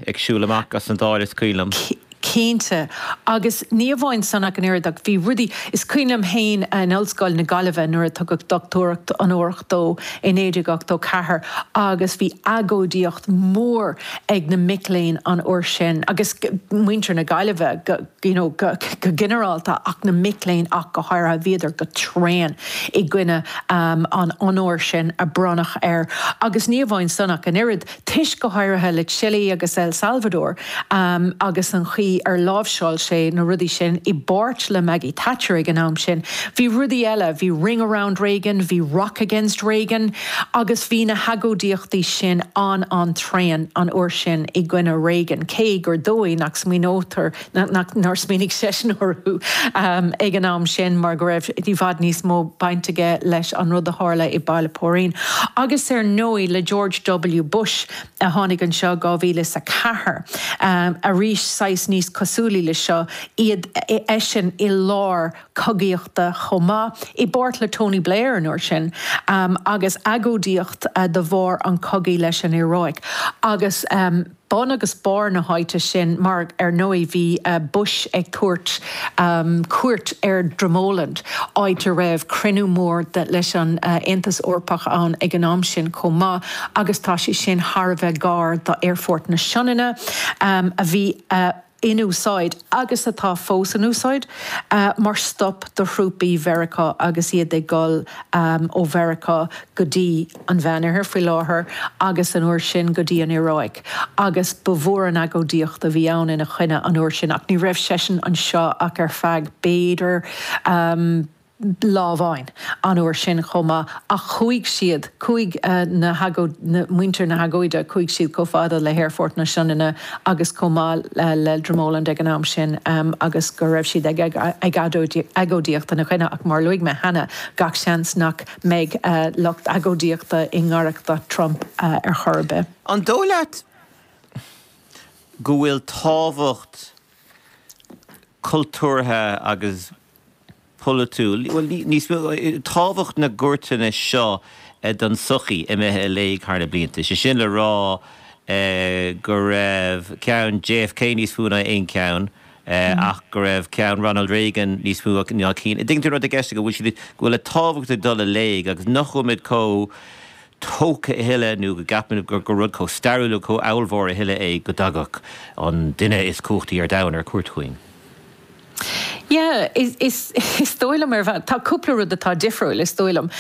ag siúl amach as an Dáil, is cuimhin liom. Cinnte. Agus ní amháin san ach an oiread ach bhí rudaí, is cuimhin liom féin in Ollscoil na Gaillimhe nuair a tugadh dochtúireacht onórach dó i 1984 agus bhí agóidíocht mhór ag na mic léinn an uair sin agus muintir na Gaillimhe you know go ginearálta ach na mic léinn ach go háirithe, bhíodar go tréan i gcoinne an onóir sin a bhronnadh air. Agus ní amháin san ach an oiread. toisc go háirithe le Chile agus El Salvador agus an chaoi ar láimhseáil sé na rudaí sin, i bpáirt le Maggie Thatcher ag an am sin. Bhí rudaí eile, bhí Ring Around Reagan, bhí Rock Against Reagan agus bhí na hagóidíochtaí sin an-an-tréan an uair sin i gcoinne Reagan, cé gur dóigh nach smaoinítear nach nár smaoinigh seisean orthu ag an am sin mar go raibh i bhfad níos mó baint aige leis an rud a tharla i Baile Póirín agus ar ndóigh le George W Bush a tháinig anseo 2004 arís saghas níos cosúlaí le seo é eisean i lár cogaíochta chomh maith i bpáirt le Tony Blair an uair sin agus agóidíocht de bharr an chogaidh leis an Iaráic agus. bun agus barr na háite sin, mar ar ndóigh bhí Bush ag cur cuairt ar Dromoland, áit a raibh cruinniú mór leis an Aontas Eorpach ann ag an am sin chomh maith, agus tá sé sin thar a bheith gar d'Aerfort na Sionainne, a bhí. in úsáid, agus atá fós in úsáid, mar stop do thrúpaí Mheiriceá agus iad ag dul ó Mheiriceá go dtí an Mheánoirthear, faoi láthair, agus an uair sin, go dtí an Iaráic, agus ba mhór an agóidíocht a bhí ann ina choinne an uair sin, ach ní raibh seisean anseo ach ar feadh, b'fhéidir. lá amháin an uair sin chomh maith, ach chuaigh siad, chuaigh na hagóid, muintir na hagóide, chuaigh siad chomh fada le hAerfort na Sionainne agus chomh maith le Dromoland ag an am sin agus go raibh siad ag agóidíocht ina choinne. Ach mar a luaigh mé cheana, gach seans nach mbeidh lucht agóidíochta i ngaireacht Trump ar chor ar bith. An dóigh leat go bhfuil tábhacht cultúrtha agus polaitiúil, bhuel, níos mó, tábhacht na gcuairteanna seo don tsochaí imithe i léig thar na blianta. Is é sin le rá go raibh ceann JFK níos mó ná aon cheann ach go raibh ceann Ronald Reagan níos mó ná cinn. An dtuigeann tú an rud atá i gceist agam, go bhfuil siad, go bhfuil a dtábhacht ag dul i léig agus nach bhfuil muid chomh tógtha a thuilleadh nó go gceapann muid gur rud chomh stairiúil nó chomh ábhalmhór a thuilleadh é go dtagadh an duine is cumhachtaí ar domhan ar cuairt chugainn. Yeah, is, is, is dóigh liom ar bhealach, tá cúpla rud atá difriúil, is dóigh liom,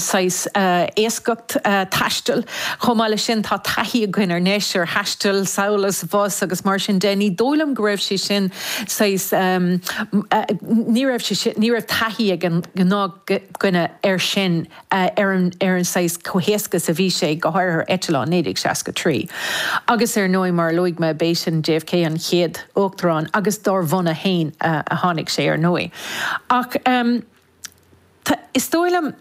saghas éascacht taistil, chomh maith leis sin tá taithí againn anois, ar thaisteal, sa Bhlascaod, bhus agus mar sin de, ní dóigh liom go raibh sé sin saghas, ní raibh sé sin, ní raibh taithí ag an gnáthdhuine air sin. ar an saghas comhthéacs a bhí sé, go háirithe eitleáin, 1963. Agus ar ndóigh, mar a luaigh mé, b'eisean, JFK, an chéad uachtarán, agus dár bhunadh féin a tháinig sé, ar ndóigh. Ach is dóigh liom,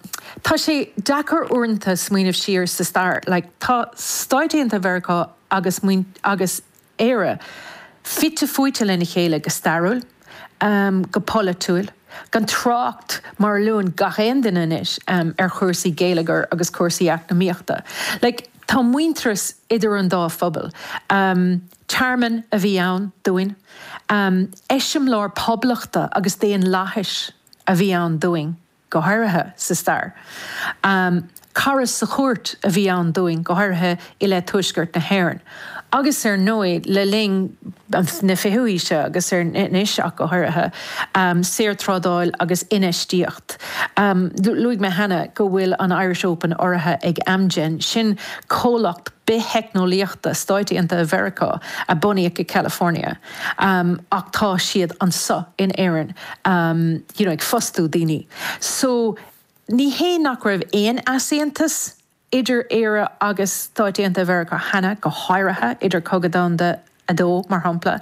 tá sé deacair uaireanta smaoineamh siar sa stair, like, tá Stáit Aontaithe Mheiriceá agus, agus, Éire, fite fuaite lena chéile go stairiúil, go polaitiúil, gan trácht, mar a luann gach aon duine anois, ar chúrsaí geilleagair agus cúrsaí eacnamaíochta. Like, tá muintearas idir an dá phobal. Tearmann a bhí ann dúinn. Eiseamláir poblachta agus daonlathais a bhí ann dúinn. go háirithe sa stair. Cara sa chúirt a bhí ann dúinn, go háirithe i leith Tuaisceart na hÉireann. Agus ar ndóigh, le linn na fichiú haoise agus anois ach go háirithe, saorthrádáil agus infheistíocht. Luaigh mé cheana go bhfuil an Irish Open urraithe ag Amgen, sin comhlacht bith-theicneolaíochta Stáit Aontaithe Mheiriceá a bunaíodh i California. ach tá siad anseo in Éirinn you know ag fostú daoine so ní hé nach raibh aon easaontas idir Éire agus Stáit Aontaithe Mheiriceá cheana, go háirithe idir Cogadh Domhanda 2 mar shampla,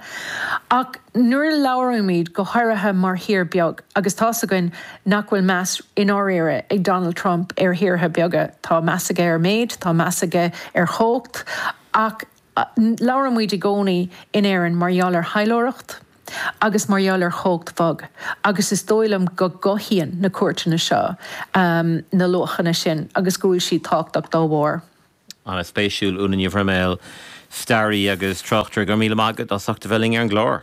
ach nuair a labhraímid go háirithe mar thír beag agus tá's againn nach bhfuil meas i ndáiríre ag Donald Trump ar thíortha beaga, tá meas aige ar méid, tá meas aige ar chumhacht ach. Labhrann muid i gcónaí in Éirinn mar gheall ar thaidhleoireacht agus mar gheall ar chumhacht bhog agus is dóigh liom go gcothaíonn na cuairteanna seo na luachanna sin agus go bhfuil siad tábhachtach dá bharr. Ana-spéisiúil. Úna Ní Bhroiméil, staraí agus tráchtaire, go raibh míle maith agat as ucht a bheith linn ar an gclár.